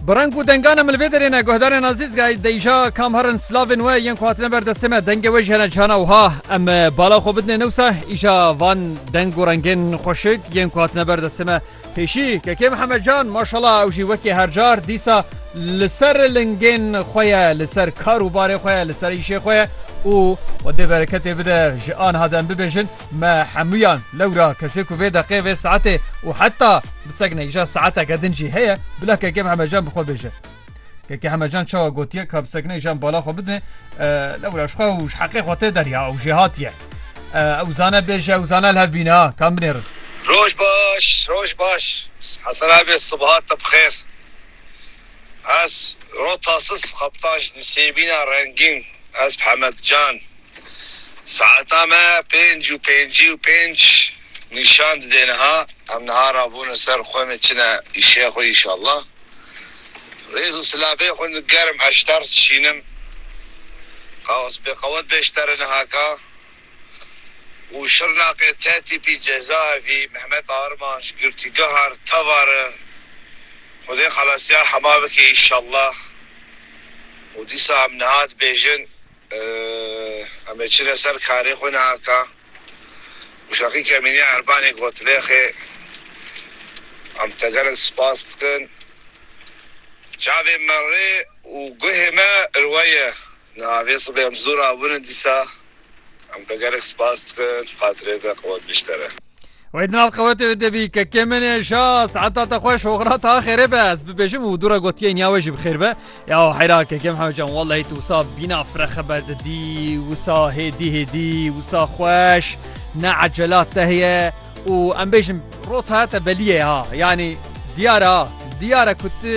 Bi reng û dengan em li vê derê ne guhdarên Azîzgay deyja kam herin slavên we yên ku hatine ber destê me dengê we jî hene cihana wiha em bala xwe bidinê newsa îja van deng û rengên xweşik yên ku hatine ber destê me pêşî kekê Mihemed Can maşala ew jî wekî her car dîsa li ser lingên xwe ye li ser kar û barê xwe ye li ser îşê xwe ye û xwedê bereketê bide ji aniha de em bibêjin Me hemûyan lewra kesê ku vê deqê vê saetê û heta bi seknekja saeteke din jî heye bila keke Mihemetcan bi xwe bêje. Keke Hemetcan çawa gotiye ka bi seknekjan bala xwe bidine lewra ji xwe û ji heqê xwe tê derya ew jê hatiye. Ew zane bêje ew zane li hev bîne ha kan binêrin. Roj baş roj baş Hesen abê sibhat te bi xêr. Ez rotasız xebtan ji nisêbîna rengîn ez Mihemetcan. Saeta me pênc û pêncî û pênc nîşan dide niha. Em niha rabûne ser xwe me çine îşeya xwe înşallah. Rêz û silabê xwe digerim eşter dişînim. Qawas bê qewet be eştere nihaka û Şirnaqê te tîpî cezaevî Mehmet Arman ji girtîgeha re tevar e. Xwedê xelasiya hema bike înşallah û dîsa em niha dibêjin. Em ê çine ser karê xwe nihaka Muşaqî Kemînî Erbanî got lêxê Em te gelek spas dikin Çavê me rê û guhê me ir we ye Niha vê sibê em ji dû rabûne dîsa Em te gelek spas dikin Xatirê te qewet bîştere. Wê di nav qewetê wê de bî kekê min ê şa saeta te xweş oxira ta xêrê be ez bibêjim û dûra gotiye niya wê jî bixêr be ya heyra kekem hewcan wellahî tu wisa bîna fre xeber didî wisa hêdî hêdî wisa xweş ne ecelat te heye û em bêjim rota te beliyê ha yanî diyar ha diyara ku tu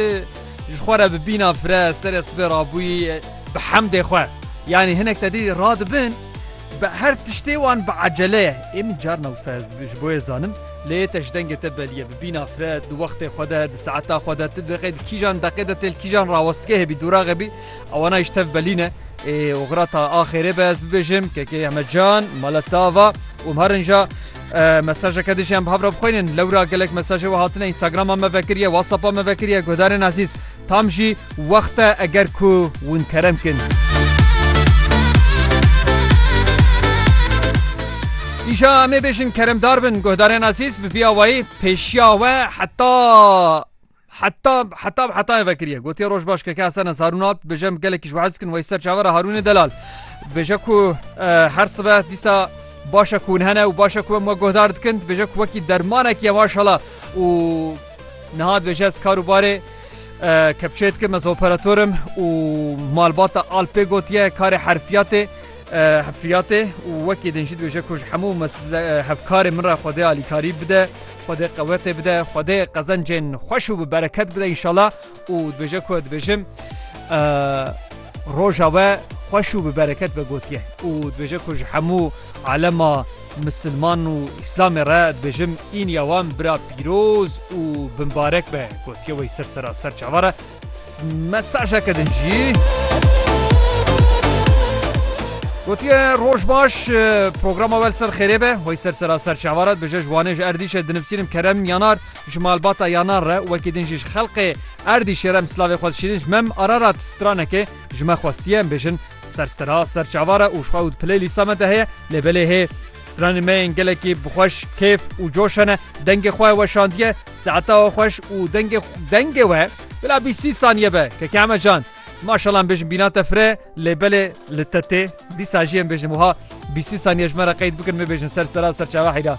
ji xwe re bi bîna fre serê sibê rabûyî bi hemdê xwe yanî hinek te dî radibin Bi her tiştê wan bi ecele ye. Ê min carna wisa ez ji bo yê zanim. Lê te ji dengê te belî ye. Bi bîna fre, di wextê xwe de, di saeta xwe de, tu dibêqî di kîjan deqê de tê li kîjan rawestgehê bî, dûraxê bî, ewana yî ji tev belî ne. Ê oxira ta axêrê be ez bibêjim kekê Ehmed Can, mala te ava û mar inja mesajeke din jî em bi hev re bixwînin. Lewra gelek mesajê we hatine, Instagrama me vekiriye, Whatsapp'a me vekiriye, guhdarên ezîz. Tam jî wext e eger ku wn kerem kin. Îja em ê bêjin keremdar bin guhdarên azîz bi vî awayî pêşiya we heta heta heta bi hetayê vekiriye gotiye roj baş keke Hesen ez Harûn Alp dibêje em gelekî ji we hez dikin wey ser çaver e Harûnê Delal dibêje ku her sibe dîsa baş e ku hûn hene û baş e ku em we guhdar dikin dibêje ku wekî dermanekî ye maşala û Niha dibêje ez kar û barê kepçeyê dikim ez operator im û malbata Alpê gotiye karê herfiyatê hefriyatê û wekî din jî dibêje ku ji hemû hevkarê min re xwedê alîkarî bide xwedê qewetê bide xwedê qezencên xweş û bi bereket bide înşala û dibêje ku dibêjim roja we xweş û bi bereket be gotiye û dibêje ku ji hemû alema misilman û îslamê re dibêjim îniya wan bira pîroz û bimbarek be gotiye wey ser sera ser çava re mesajeke din jî Gotiye roj baş programa wel ser xêrê be wey ser sera ser çava re dibêje ji wanê ji erdîşe dinivsînim kerem yanar Ji malbata Yanar re wekî din jî ji xelqê Erdîşê re em silavê xwe dişînin ji mem Ararat stranekê ji me xwestiye em bêjin ser sira ser çavar e û ji xwe û di play lîsta me de heye lê belê hê stranên me yên gelekî bi xweş kêf û coş hene dengê xwe weşandiye saeta we xweş û dengê dengê we bila bîst sî saniye be keke eme can Maşallah em bêjin bîna te fire lê belê li te tê dîsa jî em bêjin wiha bîst sî saniye ji me re qeyd bikin me bêjin ser sera ser çawa heyra.